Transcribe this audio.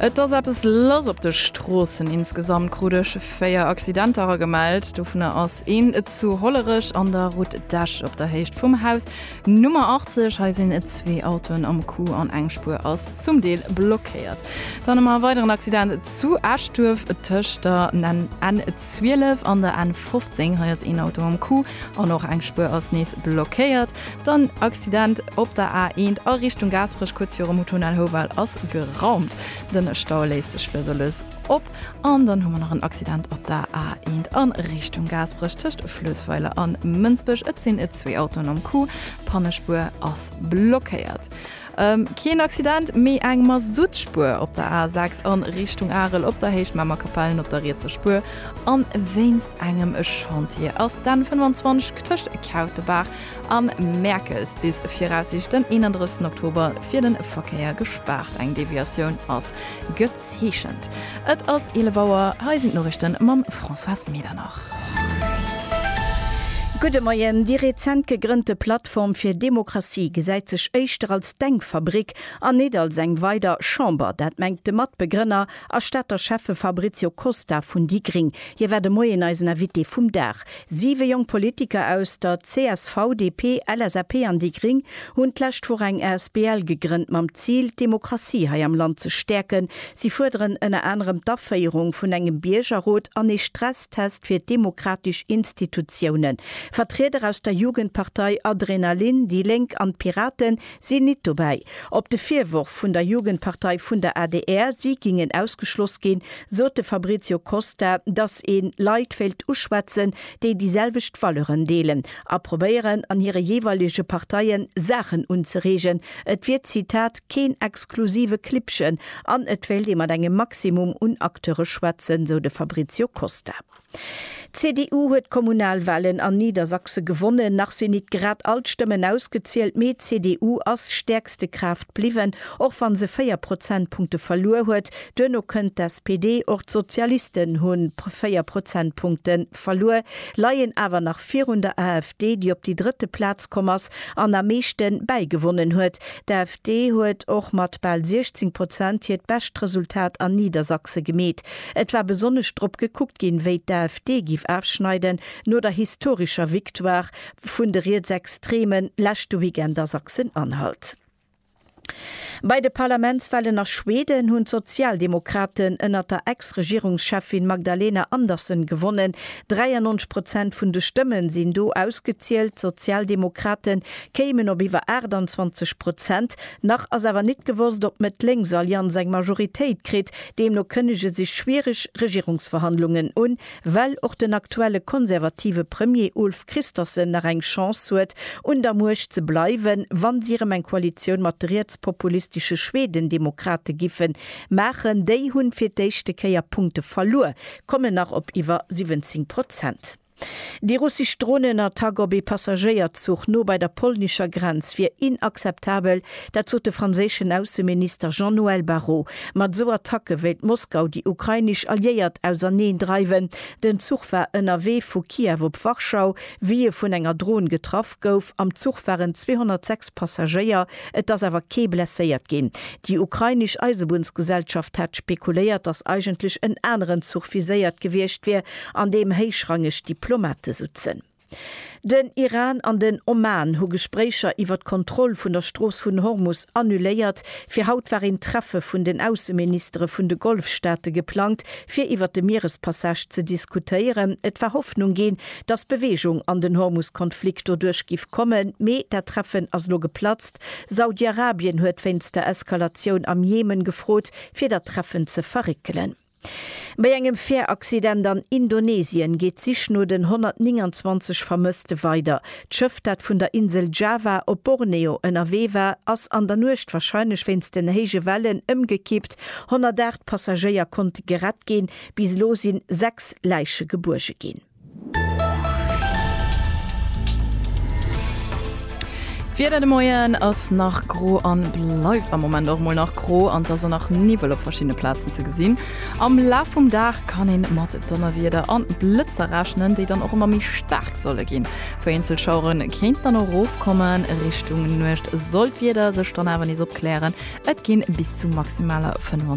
Et ass eppes lass op de Stroossen. Insgesamt krut ech 4 Accidenter gemellt. Dovunner ass een zu Hollerech an der Route d'Esch op der Héicht vum Haus Nummer 80. Hei sinn zwee Autoen am Coup an eng Spuer ass zum Deel blockéiert. Dann hu mer e weideren Accident zu Eschduerf tëscht der N12 an der N15. Hei ass een Auto am Coup an och eng Spuer ass nees blockéiert. Den Accident op der A1 a Richtung Gaasperech kuerz virum Hotel Houwald ass geraumt. Den Stau léisst sech lues a lues op. An dann hu mer nach en Accident op der A1 a Richtung Gaasperech tëscht Fluessweiler an Mënsbech. Et sinn zwee Autoen am Coup, d'Pannespuer ass blockéiert. Keen Accident, mee eng Masutspuer op der A6 a Richtung Arel op der Héicht Mamer Kapellen op der rietser Spuer a wéinst engem Chantier ass d'N 25 tëscht Kautebaach a Mäerkels bis viraussiichteg den 31 Oktober fir de Verkéier gespaart. Eng Deviatioun ass. Zeechent. Et ass 11 Auer, hei sinn d'Noriichten mam Françoise Medernach. Gudde Moien, Déi rezent gegrënnte Plattform fir Demokratie gesäit sech éischter als Denkfabrik an nit als eng weider Chamber. Dat mengt de Matbegrënner a Stater Schäffe Fabrizio Costa vun déi Gring. Hie war de Moien eisen Invité vum Dag. Siwe jonk Politiker aus der csv, DP, LSAP an déi gring hunn d'lescht Woch eng Asbl gegrënnt mam Zil, d'Demokratie hei am Land ze stäerken. Si fuerderen ënner anerem d'Aféierung vun engem Biergerrot an ee Stresstest fir d'demokratesch Institutiounen. Vertrieder aus der Jugendpartei Adrenalin, déi Lénk an d'Piraten sinn nit dobäi. Op de Virworf vun der Jugendpartei vun der adr, si gingen ausgeschloss ginn, sot de Fabrizio Costa, dass ee Leit wéilt uschwätzen, déi déi selwecht Valeuren deelen a probéieren an hire jeeweilege Parteie Saachen unzereegen. Et wier, Zitat, keen exklusive Klibbchen an et wéilt ee mat engem Maximum un Acteure schwätzen, sou de Fabrizio Costa. D'CDU huet d'Kommunalwahlen an Niedersachse gewonnen. Nach sinn nit grad all d'Stëmmen ausgezielt, mee d'CDU ass stäerkste Kraaft bliwwen, och wann se 4 Prozentpunkte verluer huet. Duerno kënnt d'SPD. Och d'Sozialisten hu 4 Prozentpunkte verluer, leien awer nach virun der AfD, déi op déi drëtte Plaz komm ass an am meeschte bäigewonnen huet. D'AfD huet och mat bal 16 Prozent hiert bescht Resultat an Niedersachse gemeet. Et war besonnesch drop gekuckt ginn, wéi d'AfD giff afschneiden no der historescher Victoire vun de Rietsextreme leschte Weekend a Sachsen-Anhalt. Bei de Parlamentswahlen a Schweden hunn d'Sozialdemokraten ënnert der Ex-Regierungscheffin Magdalena Andersson gewonnen. 93 Prozent vun de Stëmmen sinn do ausgezielt. D'Sozialdemokraten kéimen op iwwer 28 Prozent. Nach ass awer nit gewosst, op d'Mëtt-Lénks-Allianz eng Majoritéit kritt. Deemno kënnege sech schwiereg Regierungsverhandlungen un, well och den aktuelle konservative Premier Ulf Kristersson nach eng Chance huet, un der Muecht ze bleiwen, wann si erëm eng Koalitioun mat de rietspopulistesche Schweden-Demokrate giffe maachen. Déi hunn fir d'éischte Kéier Punkte verluer, kommen nach op iwwer 17 Prozent. Déi russesch Dronenattack op ee Passagéierzuch no bei der polnescher Grenz wier inakzeptabel, dat sot de franséischen Ausseminister Jean-Noël Barrot. Mat esou Attacke wéilt Moskau déi ukrainesch Alliéiert auserneen dreiwen. Den Zuch war ënnerwee vu Kiew op Warschau, wéi e vun enger Dron getraff gouf. Am Zuch waren 206 Passagéier, et ass awer kee blesséiert ginn. Déi ukrainesch Eisebunnsgesellschaft hat spekuléiert, datt eigentlech en aneren Zuch viséiert gewiescht wier, an deem héichrangeg Diplomate sutzen. Den Iran an den Oman hu Gespréicher iwwer d'Kontroll vun der Strooss vun Hormus annuléiert. Fir haut war een Treffe vun den Ausseministere vun de Golfstaate geplangt, fir iwwer de Mierespassage ze diskutéieren. Et war Hoffnung ginn, dass Bewegung an den Hormuskonflikt doduerch giff kommen, mee dat Treffen ass lo geplatzt. Saudi-Arabien huet wéinst der Eskalatioun am Jemen gefrot, fir dat Treffen ze verréckelen. Bei engem Fähraccident an Indonesien geet d'Sich no den 129 Vermësste weider. D'Schëff, dat vun der Insel Java op Borneo ënnerwee war, ass an der Nuecht, warscheinlech wéinst den héije Wellen, ëmgekippt. 108 Passagéier konnte gerett ginn. Bis elo si 6 Läiche gebuerge ginn. D'Wieder de Moien ass nach gro an bleift am Moment och mol nach gro an et ass och nach Niwwel op verschiddene Plazen ze gesinn. Am Laf vum Dag kann een mat Donnerwieder an Blëtzer rechnen, déi dann och emmer méi staark solle ginn. Vereenzel Schaueren kéinten dann och erofkommen. Richtung Nuecht soll d'Wieder sech dann awer nees opklären, et ginn bis zu maximaler 25.